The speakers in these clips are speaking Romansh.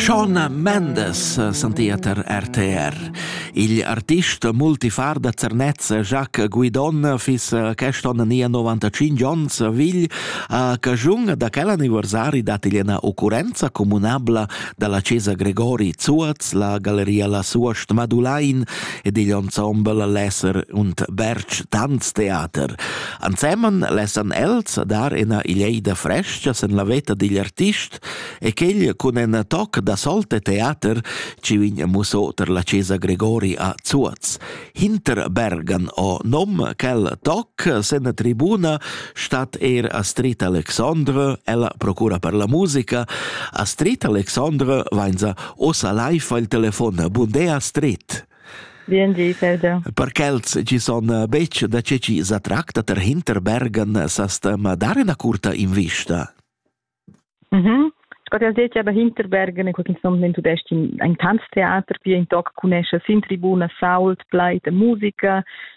Shona Mendes sentia tar RTR. Il artist multifar da Zernez Jacques Guidon fis quest'onn nia 95 onns vegl a cagiun da quel anniversari dat igl ena occurrenza comunabla dalla Cesa Gregori Zuaz, la galleria La Suost Madulain ed igl ensemble Lesser und Berg Tanztheater. Ansemen lessan els dar ina ileida frescha sen la veta digl artist e quegl cun en toc da solte teater ci vin muso ter la Cesa Gregori a Zuoz. Hinter Bergan o nom quel toc sen tribuna stat er Astrid Alexandre, ella procura per la musica. Astrid Alexandre vainza osa live al telefon. Bundea Astrid. Per quels chi son eh, betg da che chi sa tracta ter Hinterbergen eh, sastem eh, dar ina curta invista? Mhm. Sco detg, aber Hinterbergen è qualche somma in tudest in ein Tanztheater, pia in toc cunesce sin tribuna, sault, pleit e musica,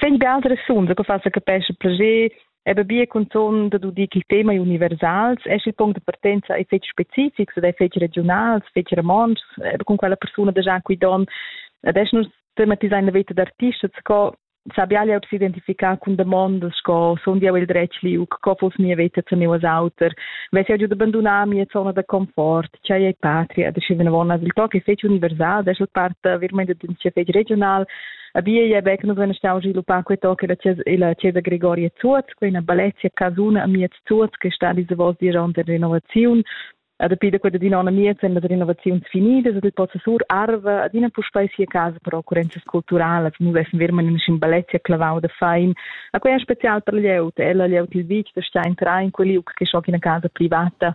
Vegn be altra resuonda che fa sa capescha plascher e bia conton da dir ch'il tema è universals è il punct de partenza è fetg specifics ed è fetg regionals, fetg romontschs, con quella persona da Jean Quidon. Adesso nus tematisein la veta d'artistas sco sabial jau s'identificar cun demandas sco son jau il dretg liu, co fos mia veta zu meu auter, ves jau giu d'abbandonar mia zona da confort, chai è patria, da schi venavon as il toc è fetg universal, adesso la part veramente d'un fetg regional, Abia je bec nus nostalgi lupar quei toc la la Chiesa Gregoria Zuoz, quei una balezia casuna a miez Zuoz che sta diese vos diront der Renovazion. Ad api da quella dinona miez en la renovazions finidas ad il possa sur arva ad ina puspei sia casa per occurrenzas culturales nu vessen wir man in schin balezia clavau da fein a quei special per lieut ella lieut il vitg da stein train quel liug che schoc in casa privata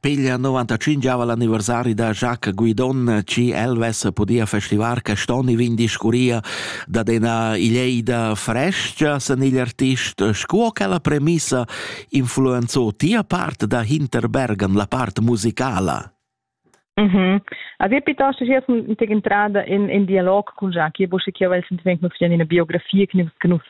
Piglia 95 l'anniversari da Jacques Guidon, chi el vess podia festivar quest'on i vin discurria dad ena ileida frescia sen igl artist, sco che la premissa influenzò tia part da Hinterbergen, la part musicala. Mm -hmm. Aveva piuttosto giato in entrada in, in dialog con Jacques, bo che io vel sentiment nus in una biografia che nus che nus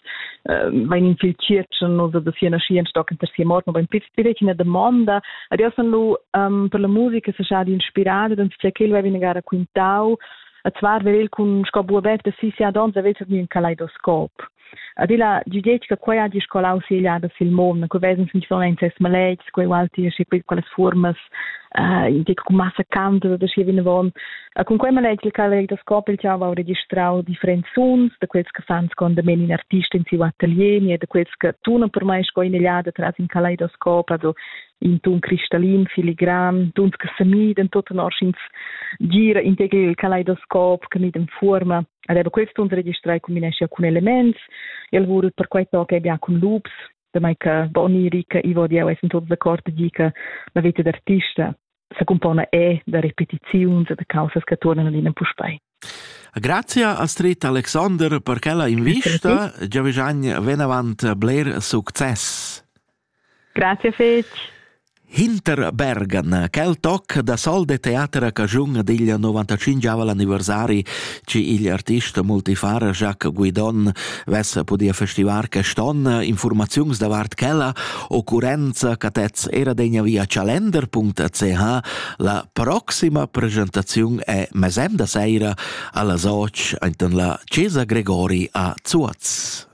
vain in fil circen nus da sia nascia in stock in terza morte, ma più direi una domanda. Adesso san lu um, per la musica se sa di inspirare, dann sia che lui viene gara quintau, a zwar vel il con sco bu avert da si sia donza vel un kaleidoscop. adilla giudiet che quei hagi scolau segliada sil mon che vesens nifonent ses maletgs quei walti schi pil quelles formas uh, che con massa canto da schi vinavon e con quei maletgs il caleg da scop il chava ho registrau differents suns da quels che fan con de men in artist in siu atelier e da quels che tuna per mai sco inegliada tras in kaleidoscop also in tun cristallin filigran tuns che semiden tot en orschins gira integri il kaleidoscop che mit in forma Aveva quels tuns registrai combineschia cun elements, el vul perquai toca e bia cun loops, damai che Boniri che Ivo Dieu è tuts d'accord di che la vita d'artista se compona e da repetiziuns e da causas che tornano in puspei. Grazie Astrid Alexander per quella invista. Giavigegn venavant bler succes. Grazie fetg. Hinter Bergan, quel toc da sol de teater a Cagiun ad igl 95 l'anniversari, ci igl artist multifara Jacques Guidon vess podia festivar quest'onn informaziuns davart quella occurrenza catez era degna via calender.ch. La proxima presentaziun è mesemda seira alla soc enten la Cesa Gregori a Zuaz.